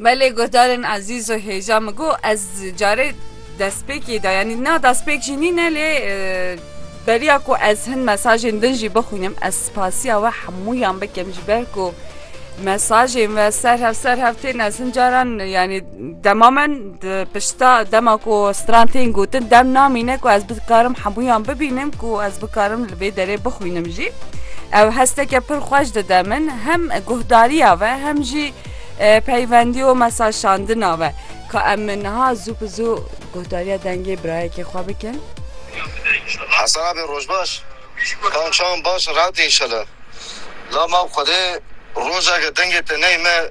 Belê guhdarên ezîz û hêja min got ez carê destpêkê de yanî na destpêk jî nîne lê beriya ku ez hin mesajên din jî bixwînim ez spasiya we hemûyan bikim ji ber ku mesajên we ser hev ser hev tên ez hin caran yanî Dema min di pişta dema ku stran tên gotin dem namîne ku ez bikarim hemûyan bibînim ku ez bikarim li vê derê bixwînim jî. Ew hesteke pir xweş dide min hem guhdariya ve hem jî e, peyvendî û mesaşandina ve. Ka em niha zû bi zû guhdariya dengê birayekê xwe bikin. Hesen abi roj baş. Ew çawan baş rahat e inşallah. La ma xwedê rojeke dengê te neyme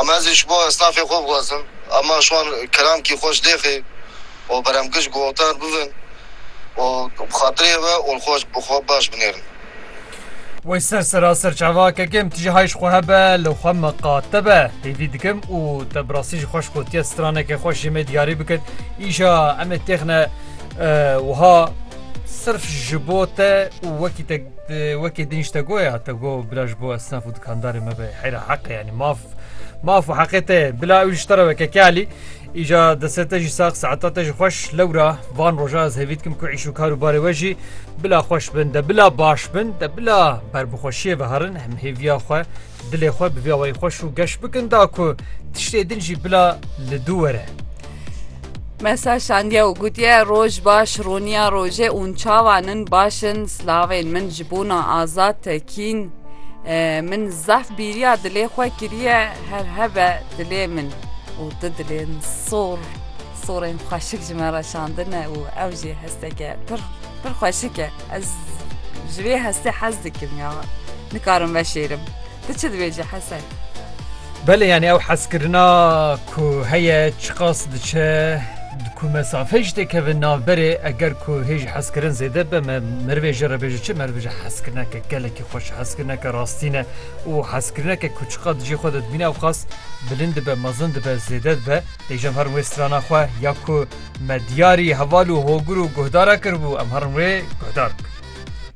Em ez ê ji bo esnafê xwe bixwazin ema şwan kirankî xwe ji lêxê û beremkij guhtar bibin û bi xatirê we û li xwe ji xwe baş binêrin. Wey ser seraser çavakek im, tije hay ji xwe hebe, li xwe miqate be, hêvî dikim û te bi rastî jî xweş gotiye straneke xweş jê me diyarî bikir, îşa em ê têxine wiha, Sirf ji bo te û wekî te wekî din ji te goya te go bila ji bo esnaf û dikandarê me be heyra heqe yanî maf maf û heqê te bila ew ji te re weke kelî îja destê te jî sax saeta te ji xweş lewra van roja ez hêvî dikim ku îş û kar û barê we jî bila xweş bin de bila baş bin de bila berbixweşiyê ve herin em hêviya xwe Dilê xwe bi vê awayî xweş û geş bikin da ku tiştê din jî bila li dû were. Me ser şandiye û gotiye roj baş roniya rojê ûn çawan in baş in slavên min ji bona azad tekîn min zaf bîriya dilê xwe kiriye her hebe dilê min û tu dilên sor sorên xweşik ji me re şandine û ew jî hesteke pir pir xweşik e. Ez ji vê hestê hez dikim ya. Nikarim veşêrim. Tu çi dibêjî Hesen? Belê yanî ew hezkirina ku heye çiqas diçe di ku mesafe jî tê keve navberê eger ku hê ji hezkirin zêde be me merivê jê re bêje çi meriv ji hezkirineke gelekî xweş hezkirineke rastî ne û hezkirineke ku çiqa di cê xwe de dibîne ew qas bilind dibe mezin dibe zêde dibe dêjam herin wê strana xwe ya ku Me diyarî heval û hogir û guhdara kiribû, em herin wê guhdar bikin.